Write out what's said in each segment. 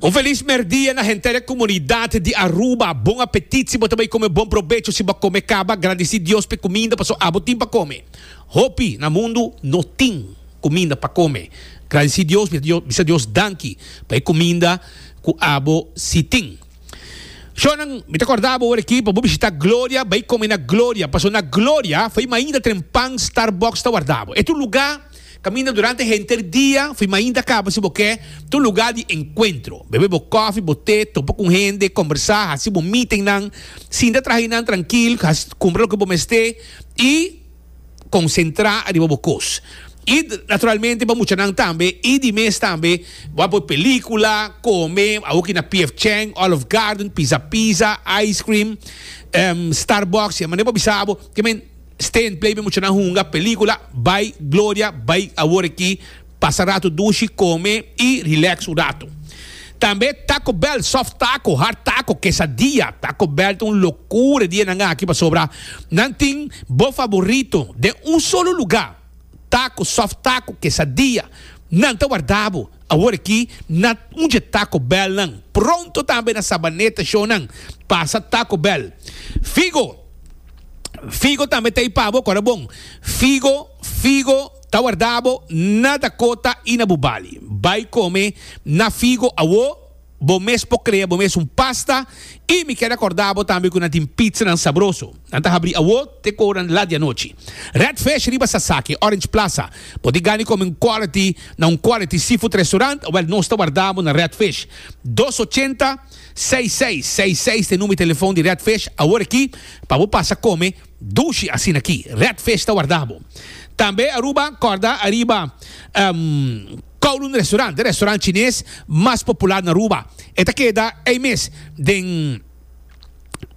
Un felis merdia na henter e komunidat di Aruba. Bon apetit si bo ta bai kome bon probecho si bo a kome kaba. Gradisí Dios pa e kuminda paso abo tin pa kome. Hopi na mundu no tin kuminda pa kome. Gradisí Dios, mi ta bisa Dios danki pa e kuminda ku abo si tin. Shornan, mi ta kòrda bo ora aki pa bo bishitá Gloria, bai kome na Gloria, paso na Gloria fai mainta tren pan Starbucks ta warda bo. E ta un lugá. Kaminda durante henter dia, fui mainta kaba si bo ke ta un lugá di enkuentro. Bebe bo kòfi, bo te, topa ku hende, kòmbersá, hasi bo mítingnan, sinta traha i nan trankil, kumpra loke bo mester i konsentrá ariba bo kos. I naturalmente pa muchanan tambe i di mes tambe bo a poi pelíkula, kome, awor ki na PF Chang, Olive Garden, Pizza Pizza, ice cream, Starbucks, e mane bo a bisa abo ke men. Steen play mi muchanan hunga pelicula bay Gloria bay awor aki pasa rato dushi come y relax un rato tambe taco bell soft taco hard taco quesadilla taco bell ta un locura e dia nan aki pasobra nan tin bo favorito den un solo lugar. taco, soft taco, quesadilla, nan ta warda bo. Awor aki na uje Taco Bell nan. Pronto tambe na Sabaneta show nan pasa Taco Bell. Figo, Figo tambe ta ipa bo kora bon. Figo, Figo ta warda bo na Dakota y na Bubali. Bay come na Figo awor. Bo mes por crea bo mes un pasta y mi kier recorda bo tambe cu nan tin pizzanan sabroso. Nan ta habri awo te cu oran la di anochi. Red Fish riba Sasaki, Orange Plaza. Bo tin gana di come un quality na un quality seafood restaurant? Wel, nos ta warda bo na Red Fish. Dos ochenta, seis seis seis seis ta e numero di telefoon di Red Fish awor aki pa bo pasa come dushi asina aki. Red Fish ta warda bo. Tambe Aruba, corda ariba, ehm, Kowloon Restaurant, e restaurant chines mas popular na Aruba, e ta keda ei mes den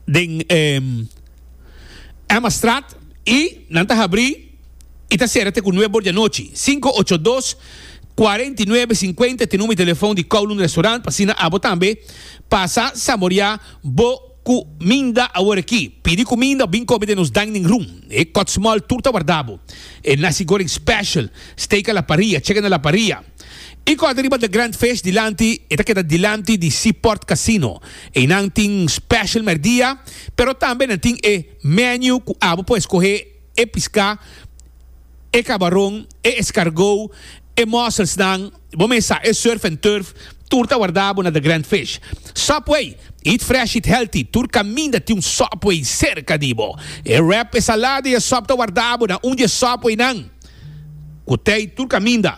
den Emmastraat i nan ta habri i ta sera te ku nuebe or di anochi. Sinku ocho dos, kuarenta i nuebe, sinkuenta e te number di telefon di Kowloon Restaurant pa asina abo tambe pasa saborea bo Ku minda awor aki. Pidi ku minda bin kome den nos dining room. E kotsmòl tur ta warda bo. E nasi goreng special. Steak a la parrilla, chicken a la parrilla. E kòrda riba The Grand Fish dilanti e ta keda dilanti di Seaport Casino. Einan tin special mèrdia, pero tambe nan tin e menu ku abo por eskohe e piská. e kabaron, e eskargó, e mòselsnan, bo mes sa, e surf and turf, tur ta wardá bo na The Grand Fish. Subway, Eat fresh, eat healthy, tur kaminda tin un Subway serka di bo. E wrap, e salada i e sòp ta wardá bo na un di e Subwaynan ku tei tur kaminda.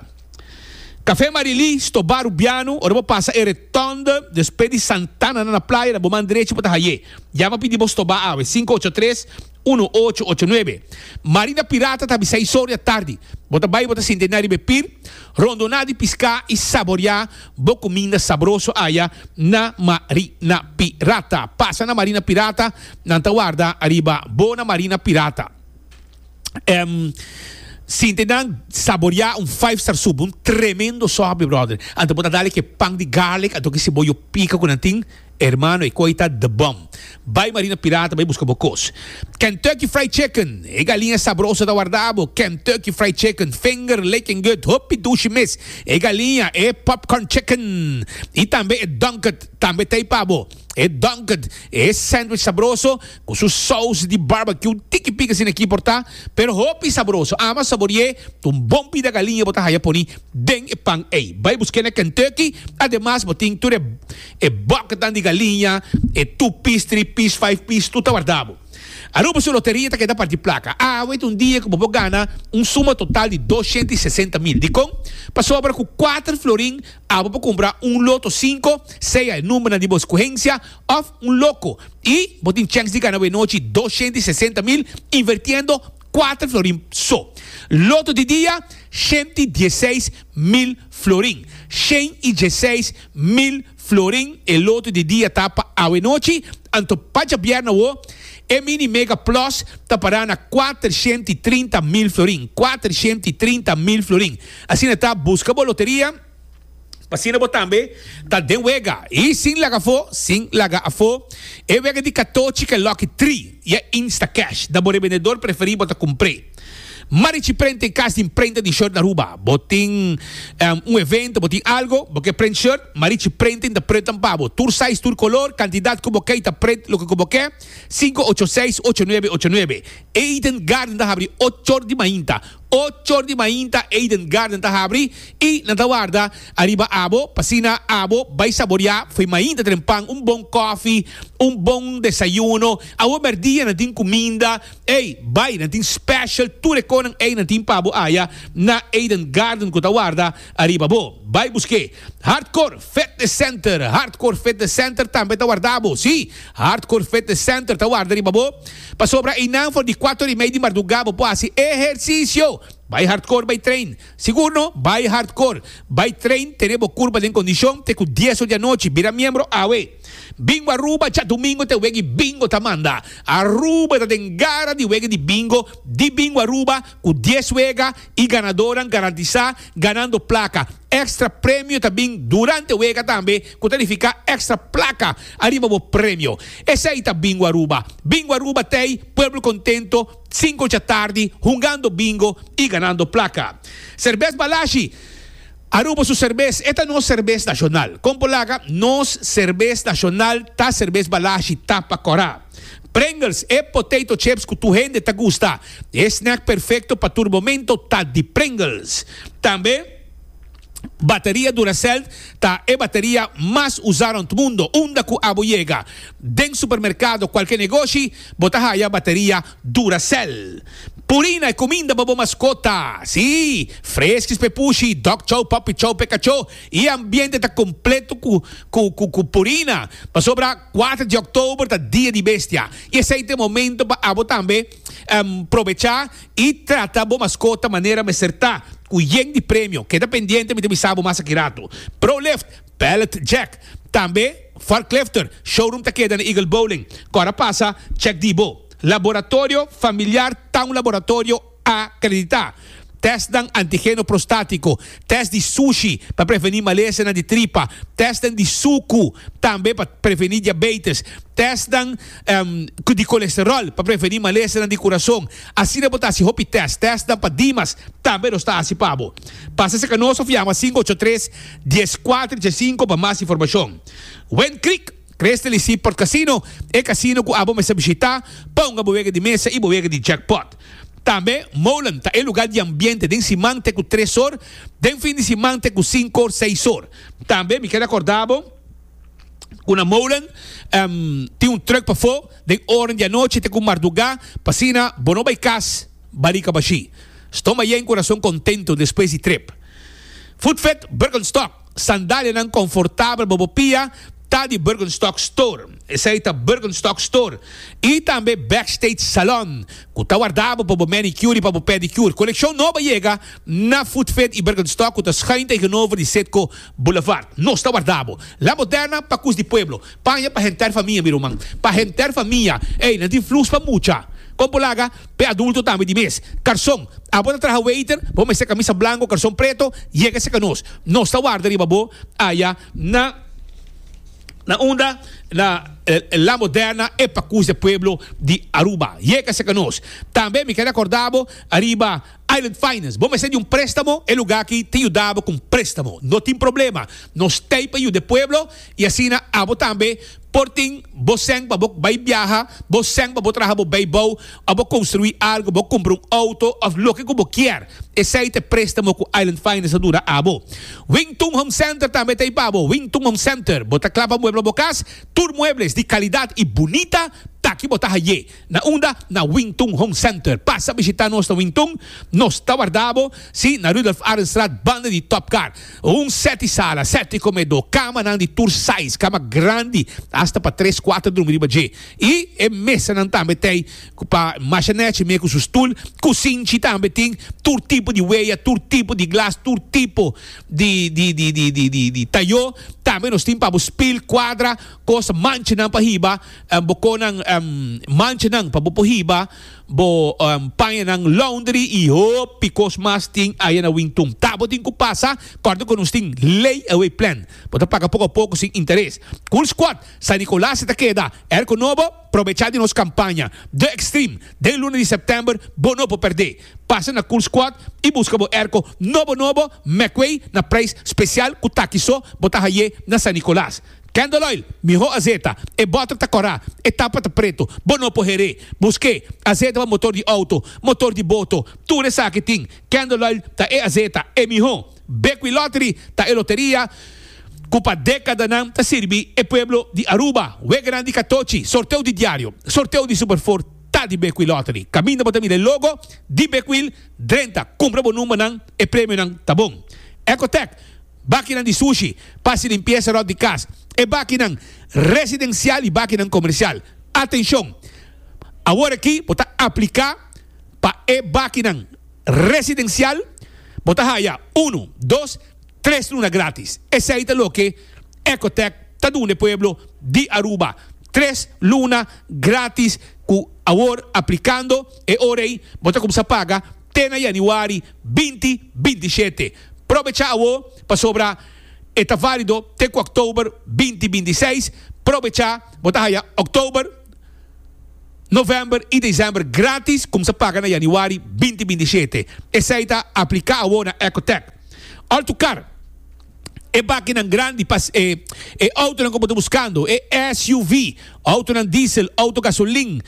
Kafé Marilí, stobá Rubiano, ora bo pasa e retònde despues di Santana na na playa na bo man drechi bo ta hay'é. Yama pidi bo stobá awe, sinku ocho tres. Unu ocho ocho nuebe. Mari na pirata ta bisa historia tardi. Bo ta bai bo ta sinta e nariba e pir, rondoná di piská i saboriá bo kuminda sabroso aya na mari na pirata. Pasa na mari na pirata, nan ta warda ariba bo na mari na pirata. Em sinta e nan saboriá un five star sup, un tremendo sòp mi bròder. Anto bo ta dal e ke pan di garlic, anto ke siboyo pika ku nan tin. Ermano e koi ta the bom. Bai Marina Pirata bai buska bo kos. Kentucky Fried Chicken, e galiña sabroso ta warda bo. Kentucky Fried Chicken, Finger Licking Good, hopi dushi mes. E galiña, e Popcorn Chicken y tambe e Dunked tambe ta ei pa bo. E Dunked, e sandwich sabroso cu su saus di barbecue tiki pica asina aki por ta, pero hopi sabroso. Ama sabori'e un bon bida galiña bo ta haya poni den e pan ei. Bai busk'e na Kentucky, ademas bo tin tur e. E bòketnan di galiña, e tu pis, tri pis, five pis, tur ta wardabo. Aruba su loteria ta keda parti plaka. Awe ta un dia ku bo por gana un suma total di dos shenta i sesenta mil. Dikon? Pasobra ku kuater florin abo por kumpra un loto sinku, sea e numbernan di bo skuhensia, òf un loko. I bo tin chèns di gana awenochi dos shenta i sesenta mil invertiendo kuater florin so. Loto di dia, shenta i dieseis mil florin. Shen i dieseis mil florin e loto di dia ta pa awe nochi, anto pa djabièrna awo e mini mega plus ta para na kuatershent i trinta mil florin, kuatershent i trinta mil florin. Asina ta, buska bo loteria p'asina bo tambe ta den wega i sin laga afó, sin laga afó, e wega di katochi k'e Lucky Three i e Instacash da bo rebendedor preferí bo ta kumpr'é. Marichi prenta e kas tin prenta di short Aruba. Bo tin un evento, bo tin algo, bo ke prent short, Marichi Printing ta prentan pa bo. Tur size, tur color, cantidad cu bo ke y ta prent loke cu bo ke. Cinco ocho seis ocho nuebe ocho nuebe. Eden Garden ta habri ochor di mainta. Ochor di mainta Eden Garden ta habri y nan ta warda ariba abo pa asina abo bay saboria fo'i mainta tren pan un bon coffee, un bon desayuno. Awo merdia nan tin cuminda. Ey, bai, nan tin special tur e conan ey nan tin pa bo aya na Eden Garden cu ta warda ariba bo. Bai busque Hardcore Fitness Center. Hardcore Fitness Center tambe ta warda bo. Si, Hardcore Fitness Center ta warda riba bo. Pasobra eynan for di cuato ora y mei di marduga bo por haci ehercicio. Bai Hardcore bai train. Segundo, bai hardcore. Bai train tene bo kurpa den kondishon te ku dies or di anochi. Bira miembro awe. Bingo Aruba djadumingo te wegi bingo ta manda. Aruba ta den gara di wegi di bingo di Bingo Aruba ku dies wega i ganadoran garantisá ganando plaka. Extra premio ta bin durante wega tambe ku ta nifiká extra plaka ariba bo premio. Esei ta Bingo Aruba. Bingo Aruba t'ei pueblo kontento. Sinku dja tardi, hungando bingo y ganando placa. Serbes Balashi, Aruba su serbes, e ta nos serbes nacional. Compo laga, nos serbes nacional ta serbes Balashi, tapa cora. Pringles, e potato chips cu tur hende ta gusta. E snack perfecto pa tur momento ta di Pringles. Tambe. Bateria Duracell ta e bateria mas usá rònt mundu. Unda ku abo yega den supermerkado o kualke negoshi, bo ta haya bateria Duracell. Puri na e kuminda pa bo maskota. Sí, freskis pa e pushi, dog chow, puppy chow pa e kachó. E ambiente ta kompleto ku purina. Pasobra kuater di òktober ta Dia di Bestia i esei ta e momento pa abo tambe. Probecha y trata bo mascota manera mester ta, cu yen di premio. Keda pendiente mi ta bisa bo mas aki rato. Prolift, Pallet Jack, tambe Forklifter, showroom ta keda na Eagle Bowling. Cora pasa, check di bo. Laboratorio Familiar ta un laboratorio acredita. testnan antigeno prostátiko, test di sushi pa prevení malesanan di tripa, testnan di suku tambe pa prevení diabeites, testnan di kolesteròl pa prevení malesanan di kurason. Asina bo ta hasi hopi test. Testnan pa dimas tambe nos ta hasi pa bo. Pasa serka nos òf yama sinku ocho tres, dies kuater, dies sinku pa mas informashon. Wen Creek. Crystal y Seaport Casino, e casino cu abo mester bishita pa hunga bo wega di mesa y bo wega di jackpot. Tambe Molen ta e lugar di ambiente den siman te cu tres or, den fin di siman te cu cinco or, seis or. Tambe mi keda corda bo cu na Molen tin un truck pafo den oren di anochi te cu marduga pa asina bo no bay cas barica bashi. Ston Bayen cu corazon contento despues di trip. Food Fete Birkenstock. Sandalianan konfortabel bo bo pia ta di Birkenstock Store, esei ta Birkenstock Store, i tambe Backstage Salon, ku ta wardabo pa bo manicure i pa bo pedicure. Kolekshon nobo a yega na Footfit i Birkenstock ku ta skain tegenover di Citgo Boulevard. Nos ta wardabo La Moderna pa kus di pueblo. Paña pa henter famia, mi ruman. Pa henter famia. Ey, nan tin flus pa mucha. Kon por laga? P'e adulto tambe di mes karson. Abo ta traha waiter, bo mester kamisa blanko o karson preto, yega serka nos. Nos ta warda riba bo aya na na unda na La Moderna e Pacus de Pueblo di Aruba. Yega serka nos. Tambe mi kere akorda bo riba Island Finance. Bo mester di un prestamo, e luga aki ta yuda bo ku un prestamo. No tin problema. Nos t'ei pa yuda e pueblo i asina abo tambe. Por tin bo sèn pa bo bai biaha, bo sèn pa bo traha bo beibou, òf bo konstruí algu, bo kumpra un outo, òf loke ku bo kier. Esei ta e préstamo ku Island Finance ta duna abo. Wing Tun Home Center tambe ta ei pa bo. Wing Tun Home Center, Bo ta klava muebel pa bo kas? Tur muebles di kalidat i bunita ta ki bo ta haié. Na unda na Wing Tun Home Center. Pasa bishita nos na Wing Tun, nos ta warda bo, sí, na Rudolf Arenstraat banda di Top Car. Un sèti sala, sèti komedó, kamanan di tur size, kama grandi asta pa tres, kuater drumi riba dje, i e mesanan tambe ta ei ku pa Masha Nèchi mei ku su stul. Kusinchi tambe tin tur tipo di weya, tur tipo di glas, tur tipo di di di tayó. Tambe nos tin pa bo spill, kuadra, kos manchanan pa hiba. Bo koh nan manchanan pa bo por hiba, bo paña nan laundry i hopi kos mas tin aya na Wingtun. Ta bo tin ku pasa kòrda ku nos tin lei away plan. Bo ta paga poko a poko sin interes. Cool Squad San Nicolas ta keda er ku no bo probechá di nos kampaña The Extreme den luna di sèptèmber. Bo no por pèrdé. Pasa na Cool Squad i buska bo erko nobo nobo Mecway na preis spesial ku taki so bo ta hayé na San Nicolas. Candle oil, miho azeta, e bottle ta cora, e tapa ta preto, bo no por heré, busque, azeta pa motor di auto, motor di boto, tur esaki tin, candle oil ta e azeta, e miho, Bequi Lottery ta e loteria cu pa decadanan ta sirbi e pueblo di Aruba, we grandi ca tochi, sorteo di diario, sorteo di super four ta di Bequi Lottery, caminda bo ta mira e logo di Bequil drenta, cumpra bo numbernan, e premionan ta bon. Ecotech, Bakinan di sushi, pas i limpiesa ròt di kas, e bakinan residensial i bakinan komersial. Atenshon! Awor aki bo ta apliká pa e bakinan residensial, bo ta haya unu, dos, tres luna grátis. Esei ta loke Ecotec ta duna e pueblo di Aruba, tres luna grátis ku awor aplikando e ora ei bo ta kumsa paga te na yanüari binti binti shete. Probecha awo pasobra e ta válido te ku oktober binti binti seis. Probecha, bo ta haya oktober, novèmber i desèmber grátis, kumsa paga na yanüari binti binti shete. Esei ta apliká awo na Ecotec. Òr tu kar, e bakinan grandi, pas e e outonan ku bo ta buskando, e SUV, outonan diesel, outo gasolin,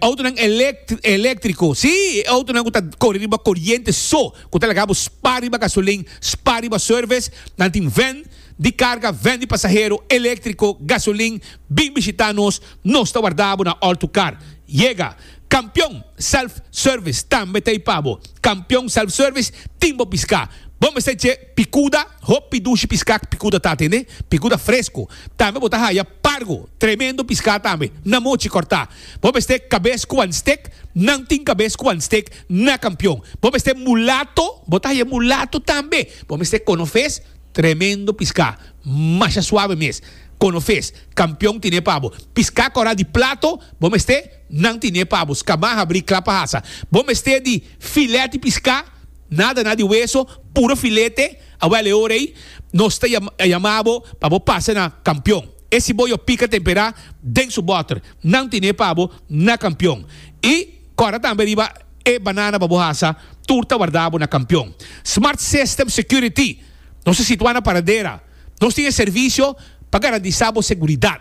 outonan elèktriko, sí, e outonan ku ta kore riba koriente so, ku ta laga bo spa riba gasolin, spa riba service. Nan tin vèn di karga, vèn di pasahero, eléktriko, gasolin. Bin bishitá nos, nos ta warda bo na Alltocar. Yega! Kampion Self Service tambe ta ei pa bo. Kampion Self Service tin bo piská. Bo mester dje pikuda, hopi dushi piská ku pikuda ta atendé, pikuda fresko. Tambe bo ta haya pargo, tremendo piská tambe, na mochi kòrtá. Bo mester kabes ku wan stek, nan tin kabes ku wan stek na kampion. Bo mester mulato, bo ta haña mulato tambe. Bo mester kono fes, tremendo piská, masha suave mes. Kono fes, kampion tine pa bo. Piská kòrá di plato, bo mester, nan tine pa bo. Skamá, habrí, klapa hasa. Bo mester di filèt di piská, nada na di weso, puro filete. Awèl e ora ei nos ta yama bo pa bo pasa na kampion. E si bo yo pica tempera den su boter nan tine pa bo na campion y cora tambe riba e banana pa bo hasa tur ta warda bo na campion smart system security nos ta situa na paradera nos tin e servicio pa garantisa bo seguridad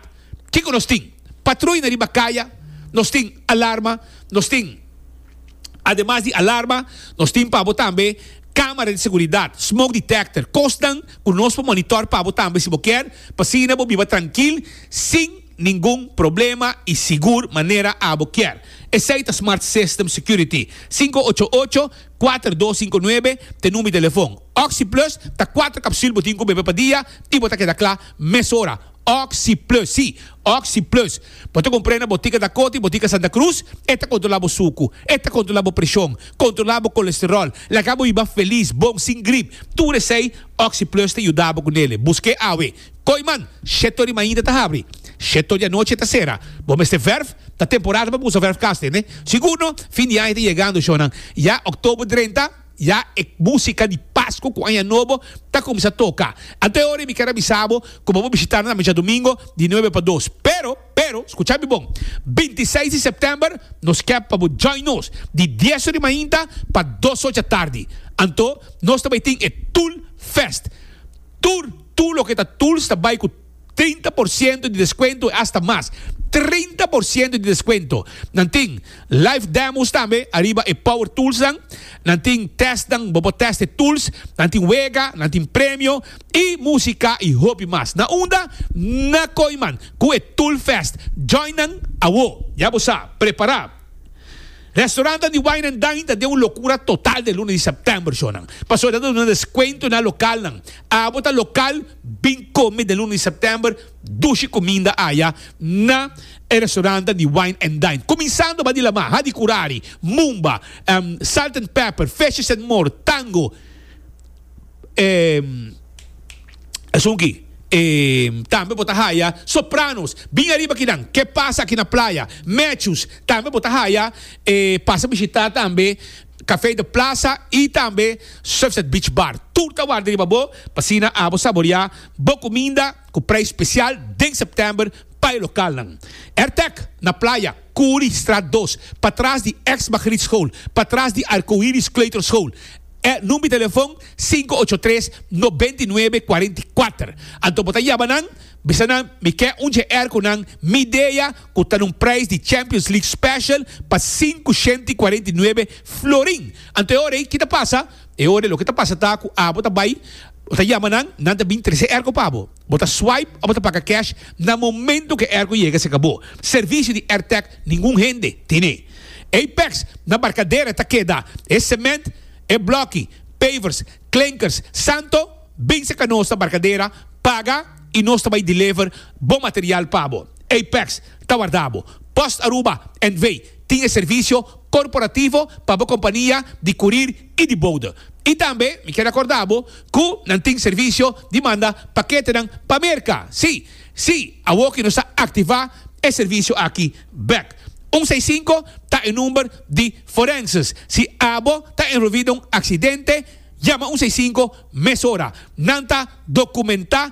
kico nos tin patruy na riba caya nos tin alarma nos tin Ademas di alarma, nos tin pa bo tambe kámara di seguridat, smoke detector, kosnan ku nos por monitor pa bo tambe si bo kier, p'asina bo biba trankil sin ningun problema i sigur manera abo kier. Esei ta Smart System Security, sinku ocho ocho, kuater dos sinku nuebe t'e number di telefòn. Oxi-Plus ta kuater kapsül bo tin ku bebe pa dia i bo ta keda kla mesora. Oxi Plus, sí, Oxi Plus. Bo ta kumpr'é na botika Dakota i botika Santa Cruz. E ta kontrolá bo suku. E ta kontrolá bo preshon. Kontrolá bo kolesteròl. Laga bo hiba felis, bon, sin grip. Tur esei, Oxi Plus ta yuda bo ku nele. Busk'é awe. Koiman, Sheto di mainta ta habri. Sheto di anochi ta sera. Bo mester vèrf. Ta temporada pa bo usa vèrfgas, tende? Sigur no? Fin di aña ta yegando, shònan. Ya, October drenta. Ya e músika di Pasku ku Aña Nobo ta kuminsá toka. Ante ora mi kier a bisa bo ku bo por bishitá nan djadumingu di nuebe pa dos. Pero, pero, skucha mi bon, binti i seis di sèptèmber nos kèp pa bo djòin nos di dies ori mainta pa dos ocha tardi. Anto nos ta bai tin e Tool Fest. Tur, tur loke ta Tools ta bai ku. Trinta por siento di deskuento i asta mas. Trinta por siento di deskuento. Nan tin live demos tambe ariba e power toolsnan. Nan tin testnan, bo por test e tools. Nan tin wega, nan tin premio i musika i hopi mas. Na unda? Na Koiman ku e Toolfest. Join nan awo! Ya bo sa, prepará! Restaurantan di Wine and Dine ta den un lokura total den luna di sèptèmber, shornan. Pasobra e ta duna deskuento na lokalnan. Abo ta lokal. Bin come den luna di september dushi cuminda aya na e restaurantan di Wine and Dine. Cuminsando ba di lama, hadi curari, mumba, salt and pepper, fishes and more, tango, e esun aki. E tambe bo ta haya sopranos, bin ariba kinan, Ke Pasa Aki Na Playa, Matthews, tambe bo ta haya e pasa bishita tambe. Café de Plaza y tambe Surfside Beach Bar. Tur ta warda riba bo p'asina abo saborea bo cuminda cu prijs special den september pa e localnan. Airtec na Playa, Curi straat dos, patras di ex Margriet School, patras di Arcoiris Kleuter School. E number di telefon sinku ocho tres noventa i nuebe kuarenta i kuater. Anto bo ta yaba nan, bisa nan mi ke un JR cu nan mi dea. cu ta na un prijs di Champions League Special pa sinku shenti i kuarenta i nuebe florin. Anto e ora ei, ki ta pasa? E ora ei loke ta pasa ta cu abo ta bai, bo ta yama nan, nan ta bin trese erko pa bo. Bo ta swipe o bo ta paga cash na momento cu e erko yega cerca bo. Servicio di Airtech ningun hende tene. Apex na Barcadera ta keda. E cement, e blokki, pavers, klinkers, santo, bin cerca nos na Barcadera, paga i nos ta bai deliver bo material pa bo. Apex ta warda bo. Post Aruba NV. tin e servisio korporativo pa bo kompania di kurir i di bouda. I tambe mi kier akorda bo ku nan tin servisio di manda paketenan pa Merka. Sí, sí, awor ku nos a aktivá e servisio aki bèk. Un seis sinku ta e number di Forenses. Si abo ta enrolví den un aksidente, yama un seis sinku mesora. Nan ta dokumentá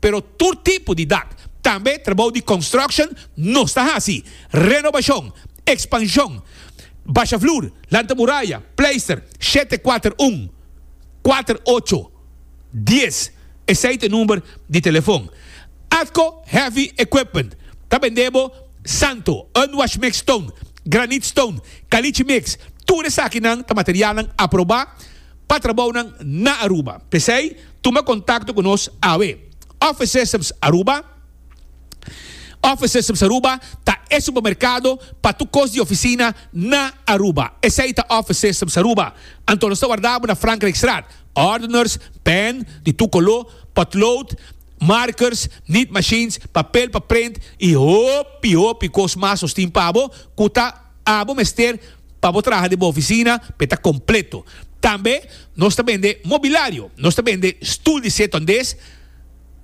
pero tur tipo di dak. Tambe trabou di construction nos ta hasi, renobacion, expansion, basha vloer, lanta muraya, pleister, shete kuater un, kuater ocho, dies, esei ta e number di telefon. Atco Heavy Equipment ta bende bo santo, unwash mix stone, granite stone, caliche mix, tur esaki nan ta materialnan aproba, pa trabounan na Aruba. P'esei, tuma kontakto ku nos awe. Office Systems Aruba Office Systems Aruba ta e supermerkado pa tur kos di ofisina na Aruba. Esei ta Office Systems Aruba. Anto nos ta warda bo na Frankrijkstraat. Ordeners, pen di tur koló, potlood, markers, niet machines, papel pa print i hopi hopi kos mas nos tin pa bo ku ta. abo mester pa bo traha den bo oficina pa e ta completo. Tambe nos ta bende mobilario, nos ta bende stoel di seto andes,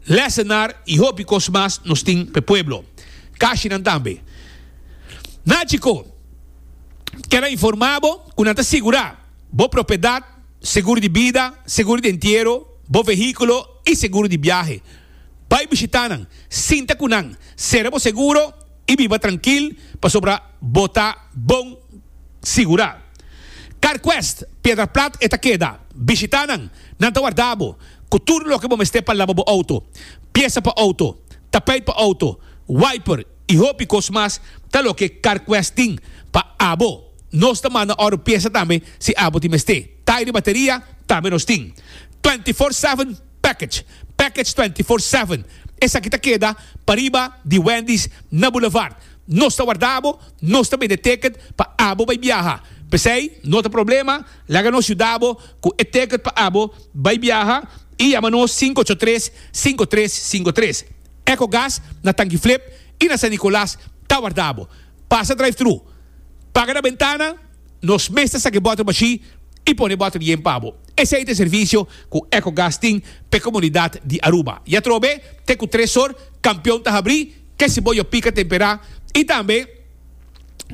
lessenaar y hopi cos mas nos tin pa e pueblo. Cashinan tambe. Nachico kel a informa bo cu nan ta sigura bo propiedad, seguro di bida, seguro di entiero, bo vehiculo y seguro di biahe. Bay bishita nan, sinta cu nan, cera bo seguro, i biba trankil pasobra bo ta bon sigurá. CarQuest, Piedra Plat e ta keda. Bishitá nan, nan ta warda bo ku tur loke bo mester pa laba bo outo. Piesa pa outo, tapeit pa outo, wiper i hopi kos mas ta loke CarQuest tin pa abo. Nos ta manda oro piesa tambe si abo tin mester. Tairi bateria tambe nos tin twenty four seven. Package, Package Twenty Four Seven, esaki ta keda pariba di Wendy's na Boulevard. Nos ta warda bo, nos ta bende ticket pa abo bai biaha. P'esei no ta problema, laga nos yuda bo ku e ticket pa abo bai biaha i yama nos sinku ocho tres, sinku tres, sinku tres. Ecogas na Tanki Flip i na San Nicolas ta warda bo. Pasa drive-thru, paga na bentana Nos mes ta saki bòter mashí i pone bòter yen pa bo. Esei ta e servisio ku Ecogas tin pa e komunidat di Aruba. I atrobe te ku tres sor kampion ta habrí, ke siboyo pika temperá i tambe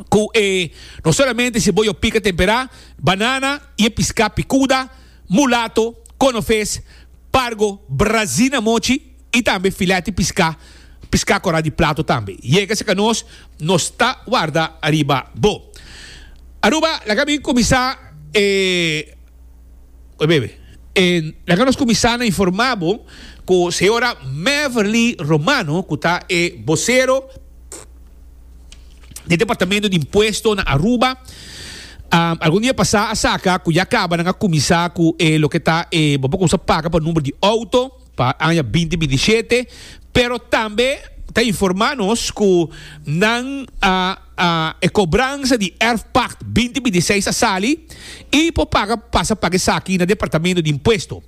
ku e no solamente siboyo pika temperá, banana i e piská pikuda, mulato, konoves, pargo, brazina mochi. y tambe fileti pisca, pisca cora di plato tambe, yega seca nos nos ta warda ariba bo. Aruba, laga mi cuminsa e, oye bebe, e laga nos cuminsa na informa bo cu Señora Meverly Romano cu ta e vocero di e Departamento di Impuesto na Aruba, algun dia pasa a saca cu ya caba nan a cuminsa cu e loke ta e bo por cuminsa paga pa number di auto. pa aña binti binti shete, pero tambe ta informá nos ku nan a a e kobransa di erfpakt binti binti seis a sali i por paga pasa paga esaki na Departamento di Impuesto.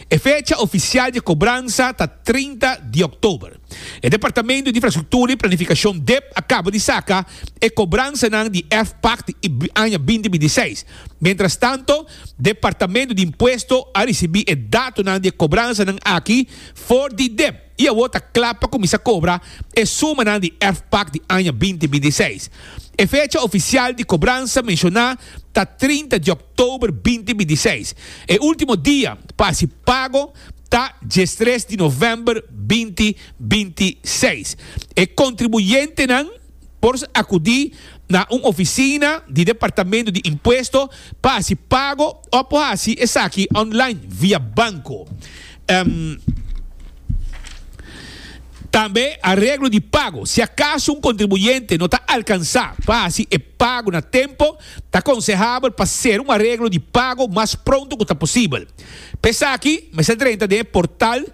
E fecha ofisial di e kobransa ta trinta di òktober. E Departamento di Infrastruktura i Planifikashon, dep, a kaba di saka e kobransanan di erfpakt di aña binti binti seis. Mientras tanto, Departamento di Impuesto a ricibi e datonan di e cobransanan aki for di dep y awor ta cla pa cuminsa cobra e sumanan di erfpac di aña binti binti i seis. E fecha oficial di cobransa menciona ta trinta di october binti binti i seis. E ultimo dia pa haci pago ta diestres di november binti binti i seis. E contribuyentenan. por akudí na un ofisina di Departamento di Impuesto pa hasi pago òf por hasi esaki online via banko. Tambe areglo di pago. Si akaso un kontribuyente no ta alkansá pa hasi e pago na tempo, ta konsehable pa sera un areglo di pago mas pronto ku ta posibel. Pa esaki mester drenta den e portal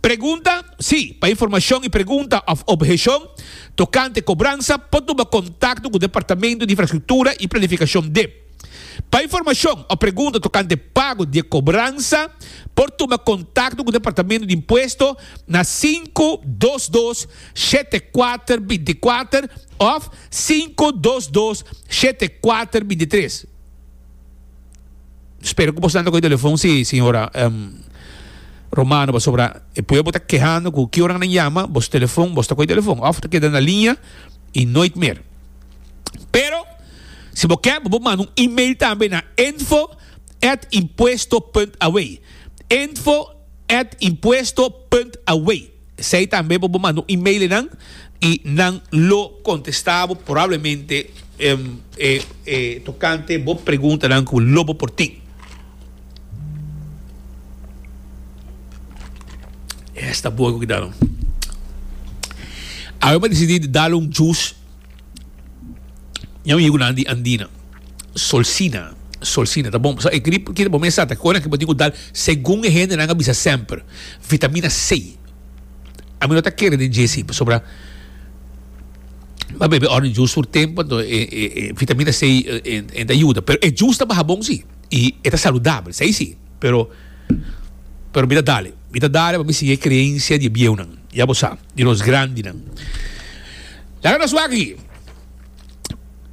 Pregunta, Si, pa informashon i pregunta òf obheshon tokante kobransa por tuba kontakto ku Departamento di Infrastruktura i Planifikashon, dep. Pa informashon òf pregunta tokante pago di e kobransa por tuba kontakto ku Departamento di Impuesto na sinku dos dos, shete kuater binti kuater òf sinku dos dos, shete kuater binti tres. Spero cu bosnan ta coge telefon si señora Romano pasobra e pueblo bo ta kehando cu ki ora nan yama bos telefon bos ta coge telefon of ta keda na linea y nooit meer pero si bo ke bo por manda un email tambe na info at impuesto punt away info at impuesto punt away. Esei tambe bo bo manda un email enan y nan lo contesta bo probablemente tocante bo preguntanan cu bo lo bo por tin. Esta bo cu ki dalo. Awe bo a decidi di dalo un jus. Nya un yunan di Andina, Solsina, Solsina ta bon. E grip kita bo mester sa ta kore nan ke bo tin ku dal segun e hendenan a bisa semper vitamina C. Ami no ta kere den dje si pasobra mi a bebe orange juice tur tempu anto e vitamina C ta yuda. Pero e juice ta baha bon si i e ta saludabel. Esei si. Pero, pero mi ta dale. Mi ta dale pa mi sigui e kreensia di e bieunan. Ya bo sa, di nos grandinan. Laga nos wak aki.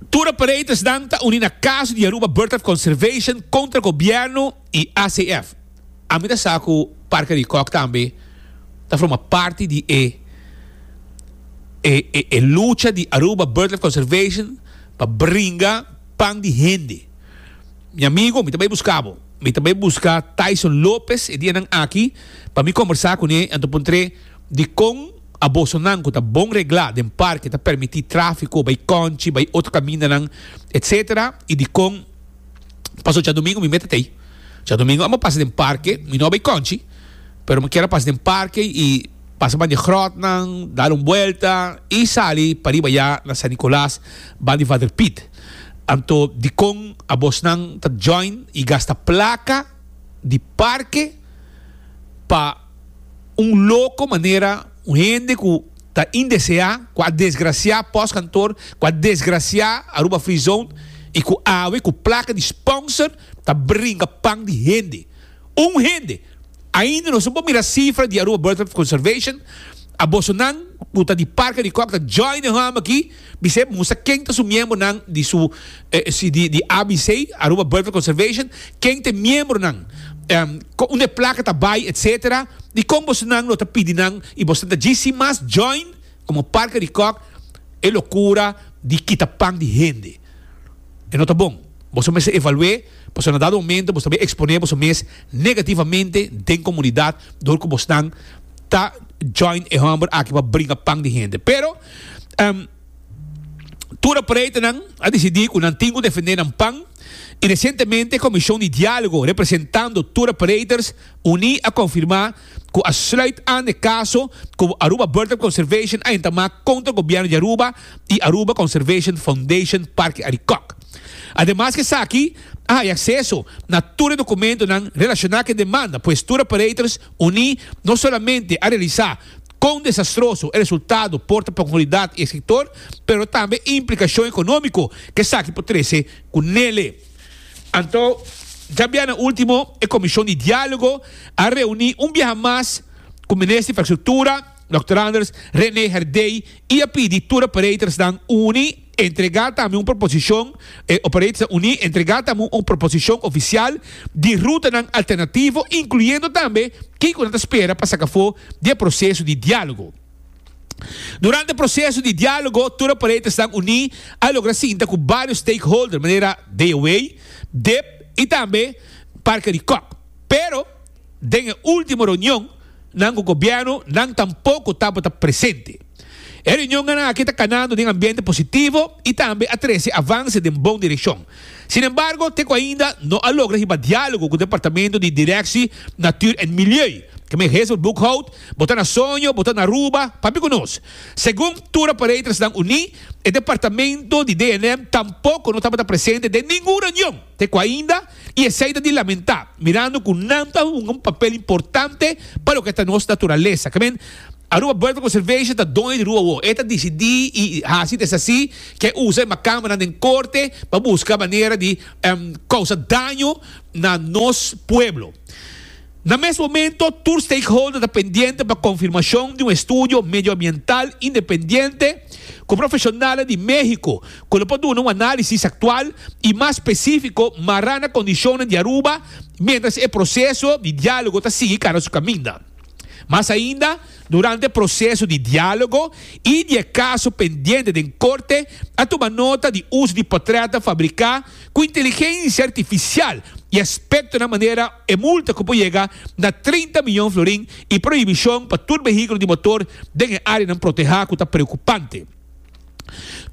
Tur operatorsnan ta uni na kaso di Aruba Birdlife Conservation kontra gobièrnu i ACF. Ami ta sa ku Parke di Kòk tambe ta forma parti di e e e e lucha di Aruba Birdlife Conservation pa bringa pan di hende. Mi amigo, mi ta bai buska bo. Mi ta bai buska Tyson Lopez e dianan aki pa mi kombersá kuné anto puntr'é dikon a bosonan ku ta bon reglá den parke ta permití tráfiko bai kònchi, bai otro kamindanan, etsetera i dikon paso djadumingu mi mete t'ei. Djadumingu a'mba pasa den parke, mi no a bai kònchi, pero mi kier a pasa den parke i pasa ban di gròtnan, dal un buelta i sali pariba ya na San Nicolas, ban di Vader Piet. Anto dikon abosnan ta join y gasta placa di parke pa un loco manera un hende cu ta indesea, cu a desgracia Post Kantoor, cu a desgracia Aruba Free Zone y cu awe cu placa di sponsor ta bringa pan di hende. Un hende, ainda nos no por mira cifra di Aruba Bird Life Conservation, a boso nan cu ta di Parke di Kok ta join e homo aki bisei mustra ken ta su miembronan di su di ABC, Aruba Bird Life Conservation, ken ta e miembronan, unda e placa ta bay etc. Dicon boso nan lo ta pidi nan y boso ta dji sin mas join como Parke di Kok e locura di kita pan di hende. E no ta bon. Boso mester evalu'é pasobra na dado momento boso ta bin exponé boso mes negativamente den comunidad dor cu bosnan ta join e homber aki pa bringa pan di hende. Pero, ehm, tur e paretenan a dicidi cu nan tin cu defendé nan pan y recientemente e Comision di Dialogo representando tur e pareters uní a confirma cu a sluit aan e caso cu Aruba Bird of Conservation a entamá contra Gobierno di Aruba y Aruba Conservation Foundation Parque Arikok. Ademas cu esaki, a haja acceso na tur e documentonan relacioná cu e demanda, pues tur operators uní no solamente a realisá con desastroso e resultado por ta pa comunidad y e sector, pero tambe e implicacion economico cu esaki por trece cu n'ele. Anto, djabia na ultimo e Comishon di Dialogo a reuni un biaha mas cu Minister di Infrastructura, Dòkter Anders, Rene Herdey y a pidi tur operators-nan uni entrega tambe un proposicion e operators-nan uni entrega tambe un proposicion oficial di rutanan alternativo, incluyendo tambe kico nan ta spera pa saca afo di e proceso di dialogo. Durante proseso di dialogo tur operatersnan uní a logra sinta ku bario stakeholder manera DOWEI, dep i tambe Parke di Kòk. Pero den e último reunion nan ku gobièrnu nan tampoko tabata presente. E reunionnan aki ta kanando den ambiente positivo i tambe a trese avanse den bon direkshon. Sin embargo te ku ainda no a logra hiba dialogo ku Departamento di Direkshi Natuur en Milieu, ke men Hazel Boekhout, Bo ta na soño, bo ta na Aruba, pamp'e ku nos. Segun tur operatorsnan uní, e departamento di DNM tampoko no tabata presente den ningun reunion te ku ainda i esei ta di lamentá mirando ku nan ta hunga un papel importante pa loke ta nos naturalesa. Kemen Aruba Bird Conservation ta doño di rua awor. E ta disidí i hasi ta esaki ke usa e makambanan den korte pa buska manera di kousa daño na nos pueblo. Na mes momento, tur stakeholder ta pendiente pa confirmacion di un estudio medioambiental independiente cu profesionalnan di Mexico cu lo por duna un analisis actual y mas specifico mara na condicionnan di Aruba mientras e proceso di dialogo ta sigui cana su caminda. Mas ainda, durante e proceso di dialogo y di e caso pendiente den corte a tuma nota di uso di portraitnan fabrica Ku inteligensia artifisial i aspekto na manera e multa ku por yega na treinta miyon florin i prohibishon pa tur behikulo di motor den e áreanan protehá ku ta preokupante.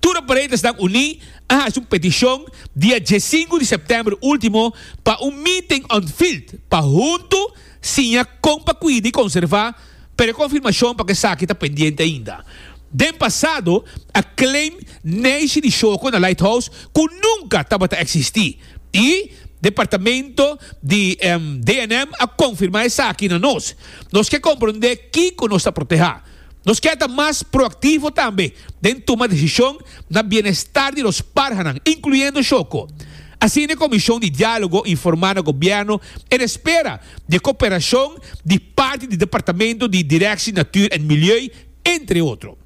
Tur operatasnan uní a hasi un petishon dia diesinku di sèptèmber último pa un meeting on field pa huntu siña kon pa kuida i konservá Pero e konfirmashon pa ku esaki ta pendiente ainda. Den pasado a claim Neishi di Shoko na Lighthouse ku nunka tabata eksistí i departamento di DNM a konfirmá esaki na nos. Nos ke komprondé kiko nos ta protehá. Nos ke ta mas proaktivo tambe den tuma desishon na bienestar di nos parhanan, inkluyendo Shoko. Asina e Komishon di Diálogo informá na Gobièrnu e ta spera di e koperashon di parti di Departamento di Directie Natuur en Milieu, entre otro.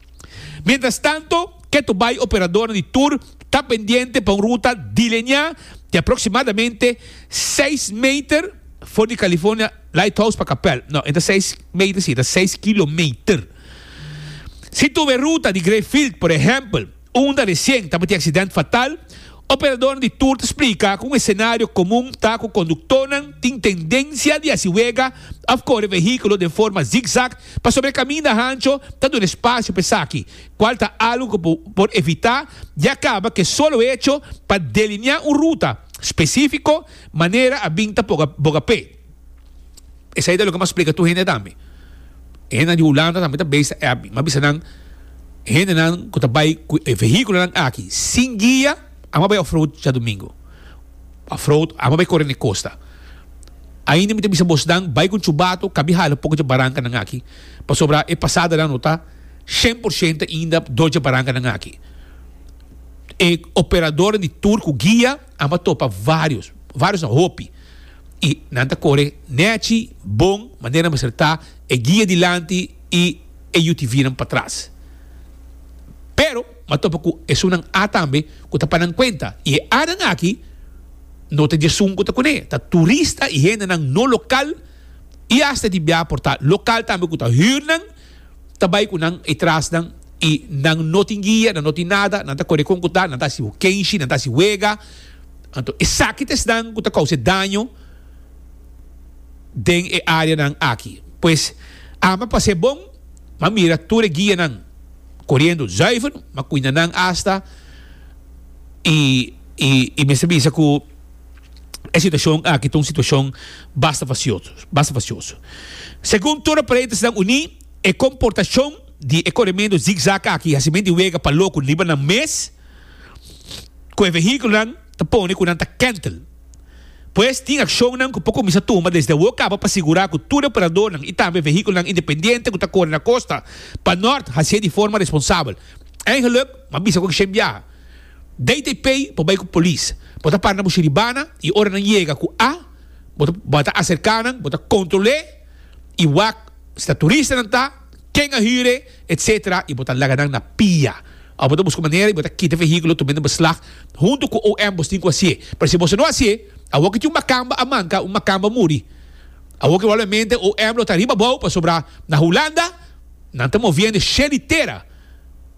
Mientrastanto, ketu bai operadornan di tur ta pendiente pa un ruta dileñá di aproksimadamente seis meter for di California Lighthouse pa Kapèl. No, e ta seis meter sí, e ta seis kilometer. Si tur e ruta di Greyfield, por ehèmpel, Unda recien tabata e accident fatal, operadornan di tour ta splica cu un escenario comun ta cu conductornan tin tendencia di haci wega of core vehiculo den forma zig-zag pasobra e caminda hancho ta duna espacio pa esaki, cual ta algo cu por evita ya caba cu e solo hecho pa delinea un ruta specifico manera a bin ta boga pe. Esei ta loke mas splika tur hende tambe. E hendenan di Hulanda tambe ta besta e abi. Mi a bisa nan, hendenan ku ta bai ku e vehikulonan aki sin guia, amo a bai off-road djadumingu. Off-road, amo a bai kore na e kosta. Ainda mi ta bisa bos nan, bai ku chubatu, kabi hala poko dje barankanan aki, pasobra e pasadanan no ta shen por shento ainda dor dje barankanan aki. E operadornan di tur ku guia. Amo a topa varios, varios na hopi, y nan ta core nechi, bon, manera mester ta e guia dilanti y e UTVnan patras. Pero mi a topa cu esunnan A tambe cu ta pa nan cuenta, y e Anan aki no ta djesun cu ta cune, ta turista y hendenan no local y hasta di bia por ta local tambe cu ta hürnan ta bai ku nan etras nan i nan no tin guia, nan no tin nada, nan ta kore kon ku ta, nan ta hasi hokenshi, nan ta hasi wega. Anto esaki ta esnan ku ta kousa e daño den e áreanan aki. Pues, ama pa ser bon, m'a mira tur e guianan koriendo zùiver, m'a kuinda nan asta i mester bisa ku. E situashon aki ta un situashon basta fasioso, basta fasioso. Segun tur e Paleita Sinan Uní, e komportashon di e korementu zigzag aki hasi men di wega pa loku riba nan mes ku e vehíkulonan ta pone ku nan ta kèntel. Pues tin akshonnan ku por kuminsá tuma desde awor kaba pa sigurá ku tur e operadornan i tambe vehíkulonan independiente ku ta kore na kosta pa nòrt hasié di forma responsabel. Eingeluk, m'a bisa ku akshén biaha. Dei te pei bo bai ku polis. Bo ta para na bo shiribana i ora nan yega ku a bo bo ta aserka nan bo ta kontrole i wak si ta turista nan ta, ken a hire etc i bo ta laga nan na pia of bo ta buska manera i bo ta kita vehikulo tumbe na beslag huntu ku OM bo stin ku hasié pero si boso no hasié awor ki tin un makamba a manka un makamba muri awor ki probablemente OM lo ta riba abou pasobra na Hulanda nan ta moviendo sheli tera.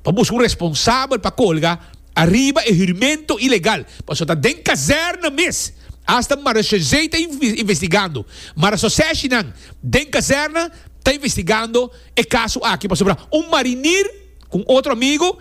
pa buska un responsabel pa colga ariba e hurimento ilegal, pasobra ta den kazerna mes, hasta Mara Chazay ta investigando, Mara Sosseshi nan den kazerna ta investigando e caso aki, pasobra un marinier cu un otro amigo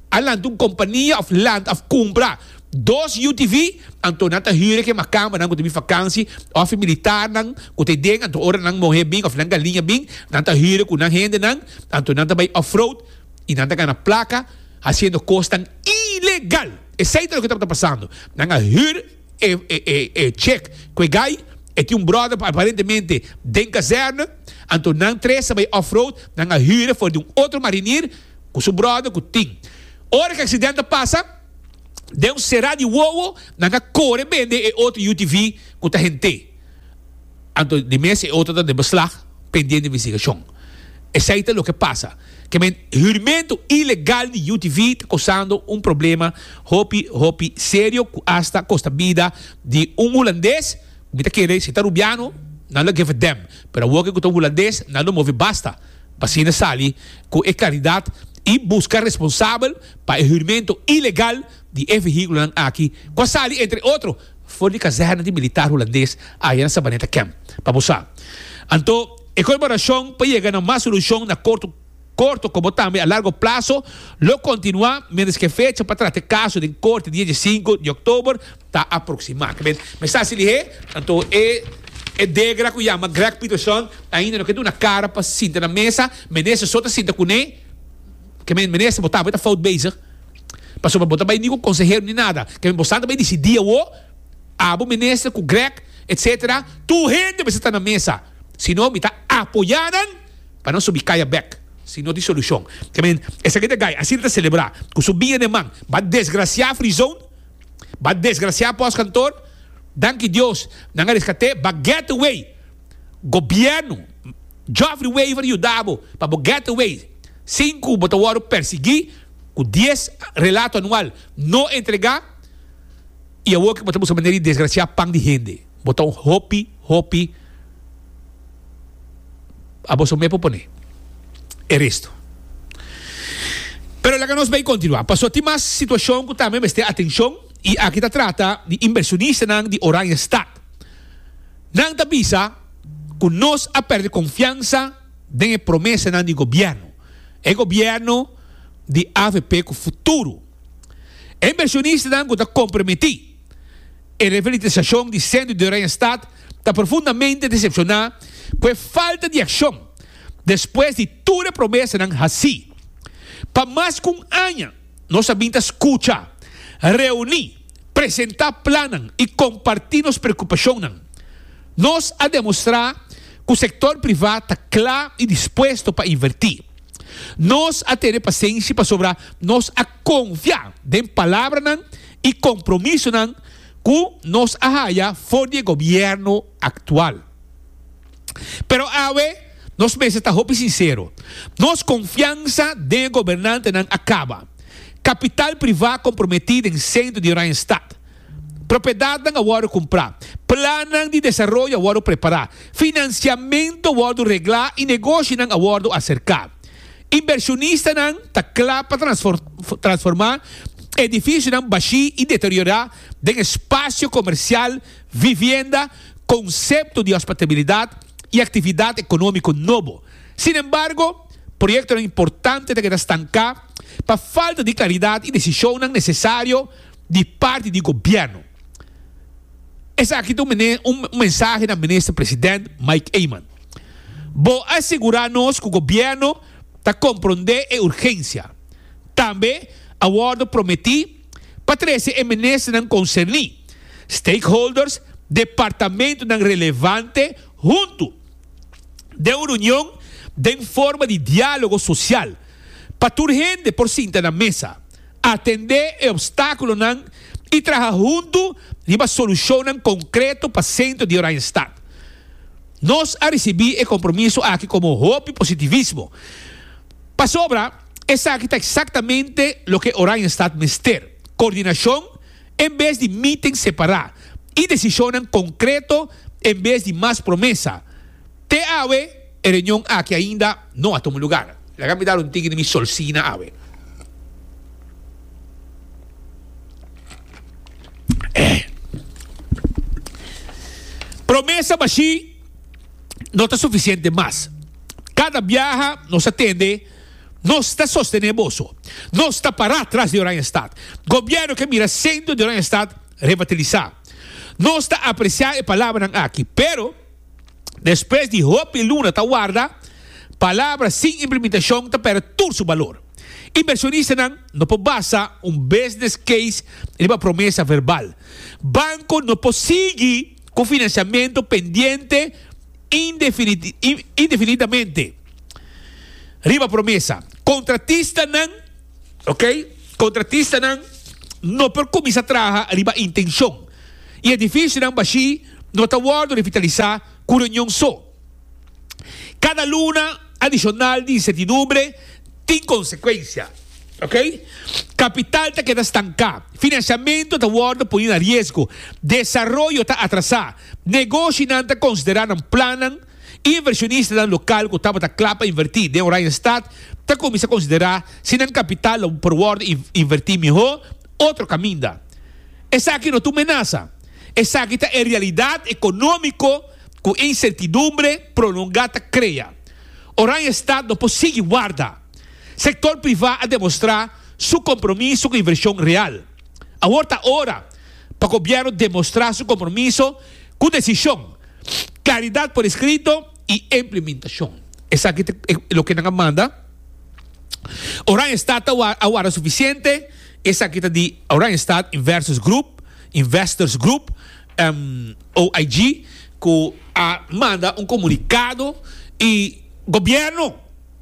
a lanta un compania of land of cumpra. Dos UTV, anto nan ta hüre ke makambanan ku ta bin fakansi òf e militarnan ku ta den, anto ora nan mohé bin òf nan galiña bin, nan ta hüre ku nan hendenan, anto nan ta bai off-road i nan ta gana plaka hasiendo kosnan ilegal. Esei ta loke tabata pasando. Nan a hür e e chek ku e gai, e tin un bròder aparentemente den kazèrne, anto nan tres ta bai off-road, nan a hüre for di un otro marinier ku su bròder ku tin. Ora ku e aksident a pasa. Deus será di wowo, nan ta kore bende e otro UTV ku ta hent'é. Anto di mes e otro ta den beslag pendiente investigashon. Esei ta loke pasa. Kemen hurmento ilegal di UTV ta kosando un problema hopi hopi serio ku asta kosta bida di un hulandes ku mi ta kere si ta rubiano nan lo geven dem pero awoke ku ta un hulandes nan lo move basta. Asina sali cu e claridad y busca responsabel pa e hurimento ilegal di e vehiculonan aki cu a sali entre otro for di kazerna di militar Hulandes aya na Sabaneta Camp. Pa bo sa. Anto, e colaboracion pa yega na mas solucion na corto corto como tambe a largo plazo lo continua mientras cu e fecha pa trata e caso den Corte di e diecinco di Oktober ta aproxima. Kibé mester hasi lihé? Anto e e degra ku yama Greg Peterson ainda no ke duna kara pa sinta na mesa. Minister so ta sinta kuné. Kibé minister bo ta bo ta fout bezig pasobra bo ta bai ni ku konsehero ni nada. Kibé bosan ta bai disidí awo abo minister ku Greg etsetera tur hende mester ta na mesa si no mi ta apoyá nan pa nan subi kaya bek si no tin solushon. Kibé esaki ta gai asina ta selebrá ku su biña den man ba desgrasiá frizon. Ba desgraciá pos kantor, danki Dios nan a rescat'é ba getaway gobierno Geoffrey Wever yuda bo pa bo getaway sin cu bo ta wordo persegui cu dies relato anual no entrega y awor cu bo ta buska manera di desgracia pan di hende bo ta un hopi hopi a boso mei por pone e resto. Pero laga nos bay continua paso tin mas situacion cu tambe mester atencion y aki ta trata di inversionistanan di Oranjestad. Nan ta bisa cu nos a perde confiansa den e promesanan di gobierno, e gobierno di avp cu futuro. E inversionistanan cu ta comprometi. E refelitesashon di Sendo di Rey en Stad ta profundamente desepshoná ku e falta di akshon despues di tur e promesanan hasí. Pa mas ku un aña nos a bin ta skucha, reuní, presentá plannan i kompartí nos preokupashonnan. Nos a demostrá ku sektor privá ta kla i dispuesto pa invertí. Nos a tene pasenshi pasobra nos a konfia den palabranan i kompromisonan ku nos a haya for di e gobièrnu aktual. Pero awe nos mester ta hopi sinsero. Nos konfiansa den e gobernantenan a kaba. Kapital privá komprometí den sentro di Oranjestad. Propiedatnan a wòrdu kumprá. Plannan di desaroyo a wòrdu prepará. Finansiamentu a wòrdu reglá i negoshinan a wòrdu aserká. Inbershonistanan ta kla pa transformá edifisionan bashí i deteriorá den e spasio komersial, vivienda, konsepto di hospatabilidat i aktividat ekonómiko nobo. Sin embargo, proyektonan importante ta keda stanká pa falta di klaridat i desishonnan nesesario di parti di gobièrnu. Esaki ta un mensahe na Minister President Mike Eman. Bo a sigurá nos ku gobièrnu ta komprondé e urgensia. Tambe a wòrdu prometí pa trese e ministernan konserní, stakeholders, departamentunan relevante huntu den un reunion den forma di diálogo sosial pa tur hende por sinta na mesa. atendé e opstákulonan i traha huntu riba solushonnan konkreto pa sentro di Oranjestad. Nos a risibí e kompromiso aki komo hopi positivismo, pasobra esaki ta eksaktamente loke Oranjestad mester, kordinashon en bes di meeting separá i desishonnan konkreto en bes di mas promesa, Te awe e reunion aki ainda no a tuma lugar. Laga mi dal un tiki di mi solsina awe. Promesa bashí no ta sufisiente mas. Kada biaha nos a tende, nos ta sostené boso. Nos ta pará tras di Oranjestad. Gobièrnu ke mira sentro di Oranjestad revatilisá. Nos ta apresiá e palabranan aki, pero. Despues di hopi luna ta warda, palabra sin implementacion ta perde tur su balor. Inversionistanan no por basa un business case riba promesa verbal. Banco no por sigui cu financiamento pendiente indefinidamente riba promesa. Contratistanan, ok, contratistanan no por cuminsa traha riba intencion y edificionan bashi. no ta wòrdu revitalisá ku reunion so. Kada luna adishonal di insertidumbre tin konsekuensia. Ok. Kapital ta keda stanká, finansiamentu ta wòrdu pone na riesgo, desaroyo ta atrasá, negoshinan ta konsiderá nan plannan, invershonistanan lokal ku tabata kla pa invertí den Oranjestad ta kuminsá konsiderá si nan kapital lo por wòrdu invertí mihó otro kaminda. Esaki no ta un menasa. Esaki ta e realidat ekonómiko ku e insertidumbre prolongá ta krea. Oranje Estat no por sigui warda. Sektor privá a demostrá su kompromiso ku invershon real. Awor ta ora pa gobièrnu demostrá su kompromiso ku desishon, klaridat por eskrito i implementashon. Esaki ta loke nan a manda. Oranje Estat ta a warda sufisiente? Esaki ta di Oranje Estat Inversus Groep Investors Group, OIG, cu a manda un comunicado y Gobierno,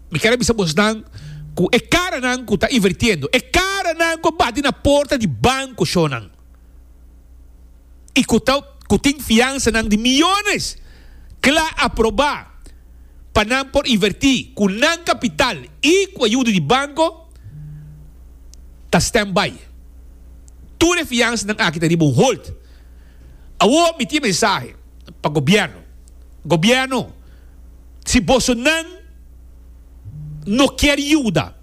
mi ker a bisa bosnan cu e caranan cu ta invirtiendo, e caranan cu a bati na porta di bancoshonan y cu ta cu tin fiansanan di millones, cla aproba pa nan por inverti cu nan capital y cu ayuda di banco. ta standby. Tur e fiansanan aki ta riba un hold. Awor mi tin e mensahe pa Gobierno, Gobierno, si bosonan no kier yuda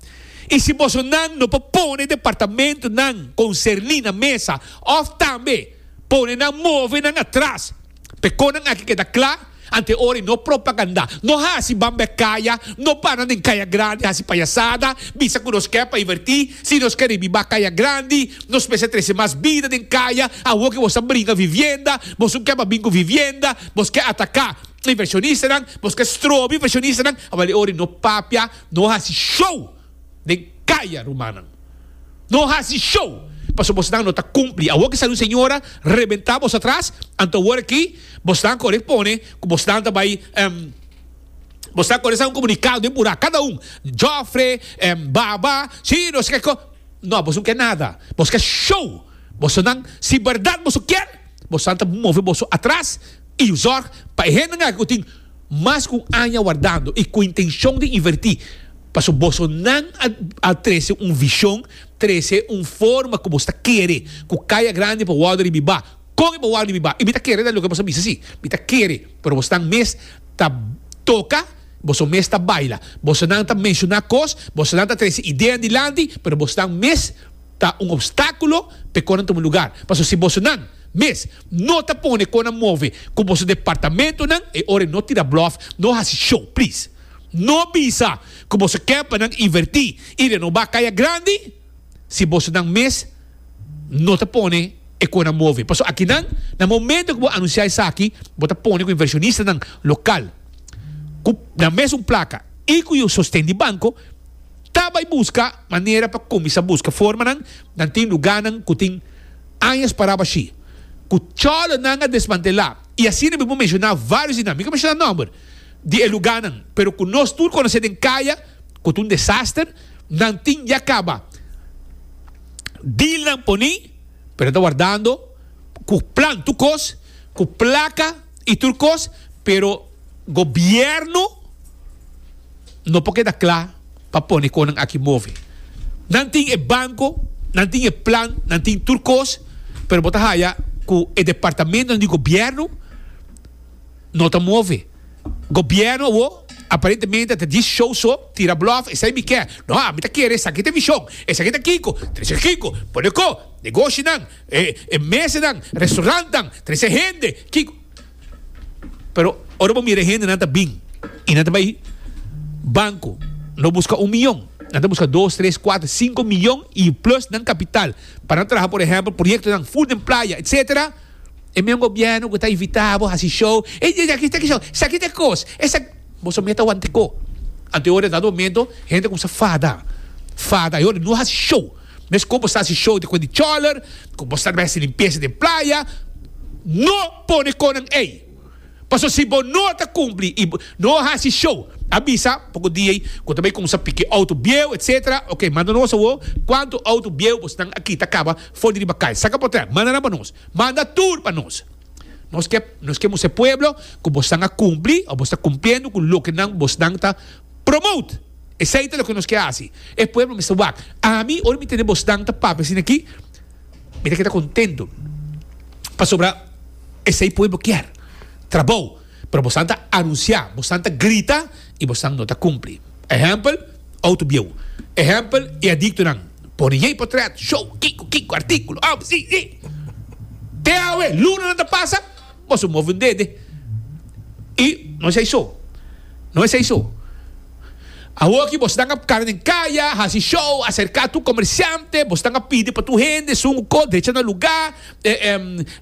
i si bosonan no por pone departamentonan concerni na mesa of tambe pone nan move nan atras, Pe conan aki keda cla ante ora y no propaganda. No haci bambe caya, no bana den caya grandi haci payasada, bisa cu nos ke pa iverti. Si nos ke ribi ba caya grandi, nos mester trece mas bida den caya. Awo ke bos ta bringa vivienda, bos no ke pa bin cu vivienda, bos ke ataca inversionistanan, bos ke strobi inversionistanan. Awor e ora y no papia, no haci show. Den kaya rumannan. No hasi show paso bosnan no ta kumpli. Awor ke sali un señora rebentá bos atras, anto awor aki bosnan kore pone ku bosnan ta bai em bosnan kore sa un komunikado den purá kada un Jofre, em Baba, si no se ke kos. No bos no ke nada bos ke show bosonan si bèrdat boso kier bosonan ta move boso atras i zorg pa e hendenan aki ku tin. mas ku un aña wardando i ku intenshon di invertí, pasobra boso nan a trese un vishon, trese un forma ku boso ta kere ku Kaya Grandi por wòrdu ribibá, kon e por wòrdu ribibá i mi ta kere ta loke boso a bisa si, mi ta kere, pero boso nan mes ta toka, boso mes ta baila, boso nan ta menshoná kos, boso nan ta trese ideanan dilanti, pero boso nan mes. ta un obstáculo p'e conan tuma lugar. Paso si bosonan mes no ta pone conan move cu boso departamentonan e ora e no tira bluff, no haci show please. No bisa cu boso ken pa nan inverti y renoba Caya Grandi si bosonan mes no ta pone e conan move. Paso akinan na momento cu bo anuncia esaki bo ta pone cu inversionistanan local cu nan mes un placa y cu yo sosten di banco, Ta bai buska manera pa kuminsá buska formanan, nan tin lugánan ku tin añas paraba shí, ku chòlonan a desmantelá, i asina mi por menshoná vários di nan, mi ka menshoná nòmber di e lugánan, pero ku nos tur konosé den kaya, ku ta un desaster, nan tin ya kaba dealnan poní, pero nan ta wardando ku plan tur kos, ku plaka. y tur cos, pero gobierno no por keda cla pa pone conan aki move. Nan tin e banco, nan tin e plan, nan tin tur cos, pero bo ta haya cu e departamentonan di gobierno no ta move. Gobierno awo aparentemente ta dies show so, tira bluff, esai mi ke, no, ami ta kere esaki ta vision, esaki ta kiko, ta esaki kiko, pone ko, negoshi nan. E mesenan, restaurantnan, trese hende, kiko. Pero ora bo mira e hendenan ta bin i nan ta bai banko, lo buska un miyon, nan ta buska dos, tres, kuater, sinku miyon i plus nan kapital pa nan traha por ehèmpel proyektonan fut den playa etsetera, e men gobièrnu ku ta invitá bo hasi show, e di aki ta kishon, esaki ta e kos, esaki, bo so meta wantiko. Anto e ora dado momento hende ta kumsa fada, fada, e ora no hasi show. Mes cu bo sa haci show di cu e di choler, cu bo sa na bay haci limpieza den playa, no pone conan ey. Pasobra si bo no ta cumpli y bo no haci show, a bisa poco dia ey cu ta bay cuminsa piki auto bieu, etc. Ok, manda nos awor cuanto auto bieu bosnan a kita caba for di riba cay. Saca portret, manda nan pa nos. Manda tur pa nos. Nos ke, nos ke mostra e pueblo cu bosnan a cumpli o bo sa cumpliendo cu loke nan bosnan ta Promote! Esei ta loke nos ke hasi. E pueblo mester wak. Ami, ora mi tende bosnan ta papia asina aki, mi ta keda contento. Pasobra esei pueblo kier. Trabou. Pero bosnan ta anuncia, bosnan ta grita y bosnan no ta cumpli. Ehempel, Autobieuw. Ehempel, e adictonan. Pone yei potret, show, kico, kico, articulo, awe, si, si. Te awe, lunanan ta pasa. Boso un move un dede y no es eiso, no es eiso. Awo aki boso tanga cara den caya, haci show, acerca tur comerciante, boso tanga pidi pa tur hende, sungu co, drecha na luga,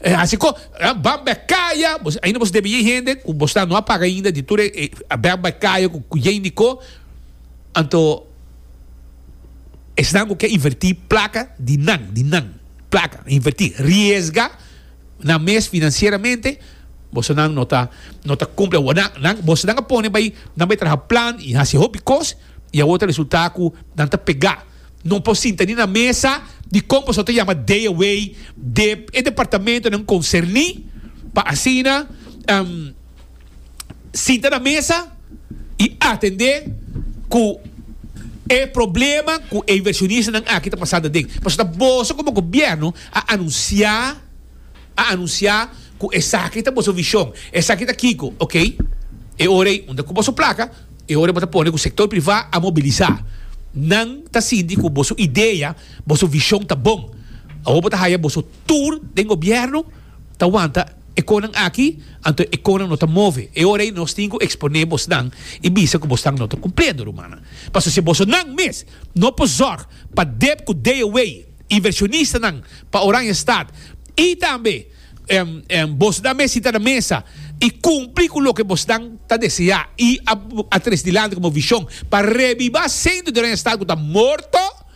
haci co, ban bek caya, ainda boso debe yey hende cu boso ta no a paga ainda di tur e ban bek caya cu yey ni co, anto esnan cu ke inverti placa di nan, di nan, placa, inverti, riesga. nan mes financieramente boso nan no ta no ta cumple awor nan nan boso nan a pone bay nan bay traha plan y haci hopi cos y awor ta resulta cu nan ta pega no por sinta ni na mesa di con boso ta yama day away de e departamentonan concerni pa asina. sinta na mesa y atende cu e problema cu e inversionistanan aki ta pasa na den. Pasobra boso como gobierno a anuncia, a anuncia cu esaki ta boso vision, esaki ta kico, ok, e ora ei unda cu boso placa, e ora ei bo ta pone cu sector priva a mobilisa. Nan ta sinti cu boso idea, boso vision ta bon. Awor bo ta haya boso tur den gobierno ta wanta. E konan aki, anto e konan no ta move. E ora ei nos tin ku eksponé bosnan i bisa ku bosnan no ta kumpliendo rumannan. Paso si bosonan mes no por zòrg pa Deb ku Dayaway, invershonistanan pa Oranjestad, i tambe bosnan mes sita na mesa i kumpli ku loke bosnan ta deseá i a tres dilanti ku bo vishon pa rebibá sentro di Oranjestad ku ta morto,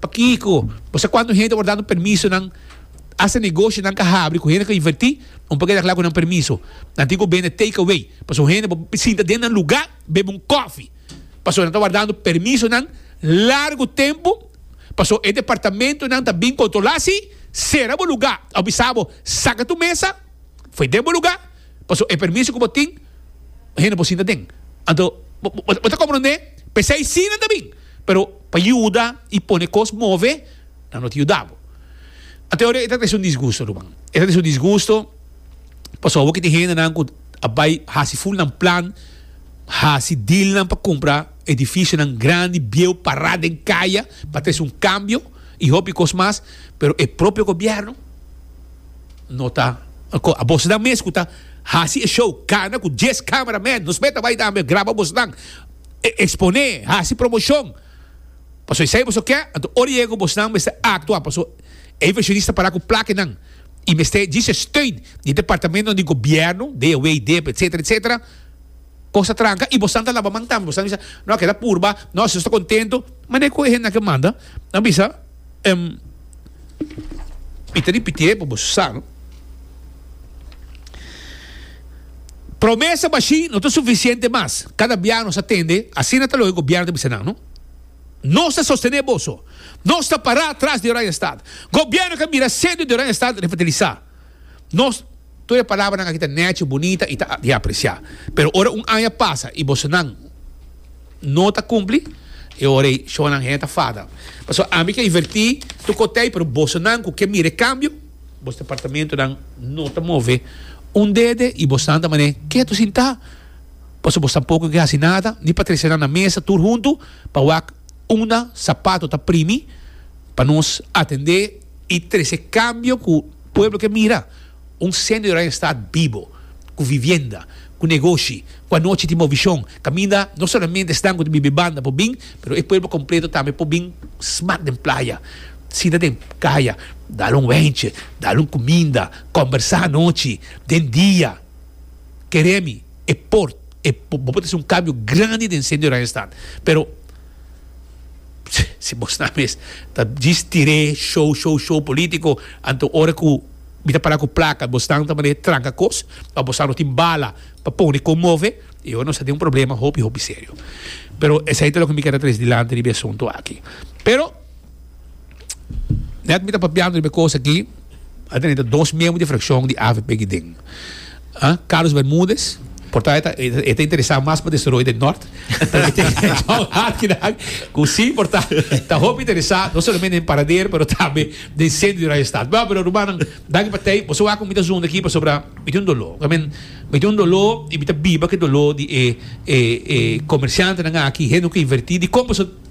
Pakico bosa cuanto hende por dando permiso nan hasta negocio nan ka habri cu hende por inverti un por keda cla cu nan permiso nan tin cu bende take away pasobra un hende por sinta den nan lugar bebe un coffee pasobra nan ta wardando permiso nan largo tempo pasobra e departamento nan ta bin controla si cera bo lugar a bisa bo saca tu mesa foe den bo lugar pasobra e permiso cu bo tin hende por sinta den anto bo ta compronde p'esai si nan ta bin pero pa yuda i pone kos move nan no ta yuda bo. Ante ora e ta trese un disgusto ruman. E ta trese un disgusto pasobra awor ki tin hendenan ku a bai hasi fulnan plan, hasi dealnan pa kumpra edifisionan grandi, bieu, pará den kaya pa trese un kambio i hopi kos mas, pero e propio gobièrnu no ta ko abosnan mes ku ta hasi e shou kana ku dies kameramen, nos mei ta bai tambe graba bosnan. e exponé, haci promoción. Paso esey boso ke, anto ora yega cu bosnan mester actua, paso e inversionista para cu plakenan y mester djis e steun di e departamentonan di gobierno, DOW, dep, etcetera, etcetera, cosa tranca y bosnan ta laba man tambe, bosnan bisa, no, a keda purba, no, si nos ta contento, manera cu e hendenan ke manda, nan bisa, Mi ta ripiti'e pa bo su sa, no? Promesa bashí no ta sufisiente mas. Kada bia nos a tende, asina ta lo e gobièrnu ta bisa nan, no? Nos ta sostené boso. Nos ta pará tras di Oranje Stad. Gobièrnu ke a mira sedu di Oranje Stad refertilisá. Nos, tur e palabranan aki ta nechi, bunita i ta di apresiá. Pero ora un aña pasa i bosonan no ta kumpli, e ora ei shownan hende ta fada. Pasobra ami ke invertí tur kotei, pero bosonan ku ke mira e kambio, bos departamentunan no ta move un dede i bos nan ta manera ketu sintá, pasobra bos tampoko ke hasi nada, ni pa trese nan na mesa tur huntu pa wak unda sapato ta primi pa nos atendé. I trese kambio ku pueblo ke mira, un sende di Oranje Stat bibo, ku vivienda, ku negoshi, ku anochi tin movishon, kaminda no solamente esnan ku ta biba e banda por bin, pero e pueblo kompleto tambe por bin smak den playa, sinta den kaya, dal un wèntje, dal un kuminda, kòmbersá anochi, den dia. Keremi e por bo por trese un kambio grandi den sende di Oranje Stat, pero. Si bo snap mes ta djis tiré show show show politico anto ora cu mi ta pará cu placa bo snan ta mane tranca cos pa bo snan no tin bala pa pone con move y awo nos ta tin un problema hopi hopi serio pero esey ta loke mi keda trese dilanti riba e asunto aki pero. Net mi ta papiando riba e kos aki, a tene ta dos miembro di frakshon di avp aki den. Carlos Bermudez, porta e ta interesá mas pa desaroyo den nòrt, pero mi tene John Harkinack ku si porta ta hopi interesá no solamente den Paradero pero tambe den sentro di Raya Stat. Bèn pero rumannan, danki pa tei. Boso wak ku mi ta zunda aki pasobra mi tin un doló. I mean, mi tin un doló i mi ta biba ku e doló di e e e komershantenan aki, hende ku a invertí di kon paso.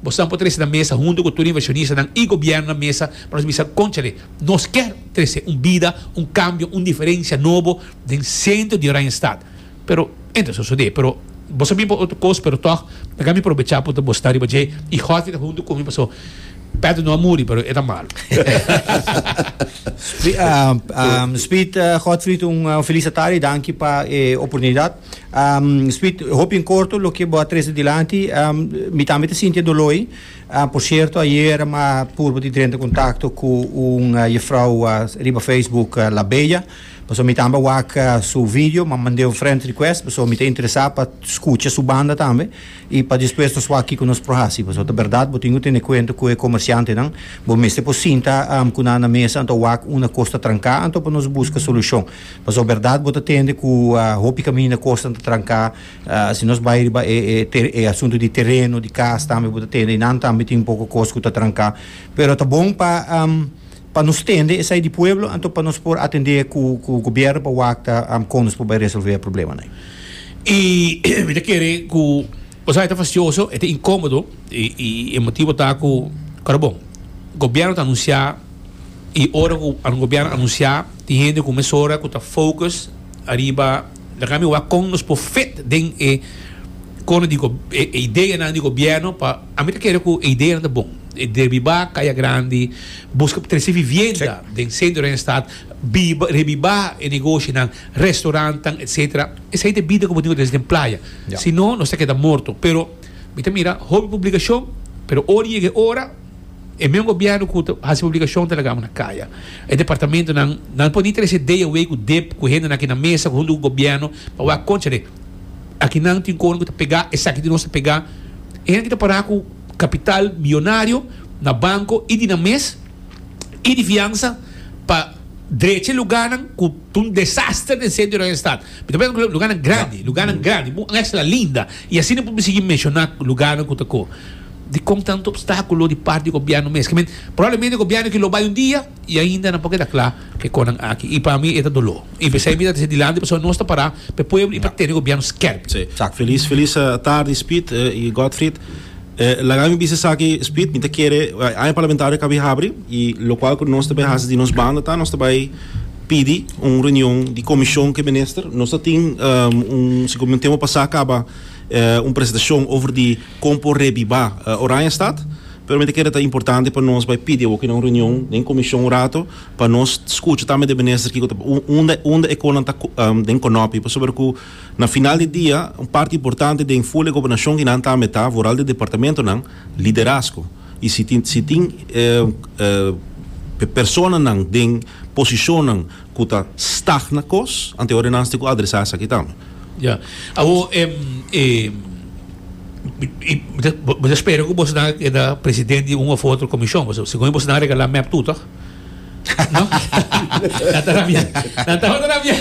Bosan por trese na mesa huntu ku tur e invershonistanan i gobièrnu na mesa pa nos bisa, Konchale, nos kèr trese un bida, un kambio, un diferensia nobo den sentro di Oranjestad. Pero e no ta sosodé. Pero boso a bin pa otro kos, pero tòg mi akami probechá punto boso ta riba dje i Godfrey ta huntu ku mi paso Pedro no a muri, pero e ta malu. Speed, Godfrey, un felis atardi. Danki pa e oportunidat. Um, Sweet, hopi en corto loke bo a trece dilanti, um, mi tambe ta sinti e doloi. Um, por cierto, ayer ma purba di drenta contacto cu un uh, juffrouw uh, riba Facebook, uh, La Bella. Paso mi tambe wak uh, su video, ma mandé un friend request, paso mi ta interesa pa scucha su banda tambe. Y pa despues nos wak kico nos pro haci. Paso ta berdad, bo tin cu tene cuento cu e comerciantenan. Bo mester por sinta um, cu nan na mesa, anto wak una cos ta tranca, anto pa nos busca solucion. Paso berdad bo ta tende cu hopi caminda cosnan ta tranca. Si nos bay riba e asunto di tereno, di cas tambe bo ta tende eynan tambe tin un poco cos cu ta tranca. Pero ta bon pa pa nos tende esai di pueblo anto pa nos por atende cu cu gobierno pa wak con nos por bay resolve e problema nan. Y mi ta kere cu bo sa e ta fastioso, e ta incomodo y e motibo ta cu ora bon gobierno ta anuncia. y ora cu gobierno a anuncia tin hende cu mesora cu ta focus ariba laga mi wak con nos por fit den e cona di e ideanan di gobierno pa ami ta kere cu e ideanan ta bon e derbiba caya grandi busca pa trece vivienda den centro den stad biba rebiba e negoshonan restaurantan etcetera esey ta e bida cu bo tin cu ta hasi den playa si no nos ta keda morto pero mi ta mira hopi publicacion pero ora yega e ora E meun gobierno cu ta haci publicacion ta lagamo na caya. E departamentonan nan por ni trece idea away cu dep cu hendenan aki na mesa hunto cu gobierno pa wak, conchale, akinan tin cono cu ta pega esaki di nos ta pega. E hende aki ta para cu capital millonario na banco y di nan mes y di fiansa pa drecha e lugarnan cu ta un desaster den centro di Oriente Staat. Mi ta pensa cu lugarnan grandi, lugarnan grandi, un mezcla linda y asina por mi sigui menciona lugarnan cu ta cu. Dikon ta nan ta opstákulo di parti di gobièrnu mes? Ke men, probablemente gobièrnu aki lo bai un dia i ainda nan por keda kla ke kon nan aki. I pa mi e ta doló. I p'esei mi ta dise dilanti pasobra nos ta pará pa e pueblo i pa tene gobièrnu skèrpi. Sí. Exact. Feliz feliz tardi Speed y Godfried. Laga mi bisa esaki Speed, mi ta kere aña parlamentario a kabi habri y lokual ku nos ta bai hasi di nos banda ta nos ta bai pidi un reunion di komishon ku e minister. Nos ta tin un, siki'o mi un tempu pasá kaba un presentashon over di. Kon por rebibá Oranjestad? Primeramente keda ta importante pa nos bai pidi awoke na un reunion den komishon un rato pa nos skucha tambe de minister kiko ta unda unda e konan ta den konòpi pasobra ku na final di dia un parti importante den full e gobernashon di nan tambe ta vooral di departamentonan liderazgo i si tin si tin e personanan den posishonnan. ku ta stagna kos, ante ora nan tin ku adresá esaki tambe. Ya. Awor, bo ta spera ku bosonan a keda presidente di un òf otro komishon, pasobra segun bosonan a regalá mèp tur tòg? No? Nan ta rabiá. Nan tabata rabiá.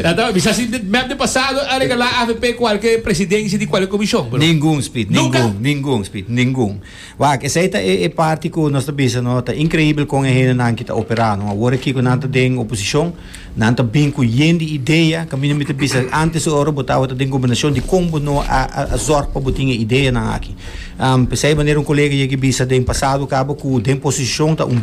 Nan ta bisa si mèp di pasado a regalá avp kualke presidenshi di kualke komishon, pero. Ningun, Speed. Ningun. Ningun, Speed. Ningun. Wak, esei ta e e parti ku nos ta bisa no ta inkreibel kon e hendenan ki ta operá no. Awor aki ku nan ta den oposishon, nan ta bin ku yen di idea, kaminda mi ta bisa ántes di ora bo tabata den gobernashon dikon bo no a a zòrg pa bo tin e ideanan aki. P'esei manera un kolega yega a bisa den pasado kaba ku den posishon ta un.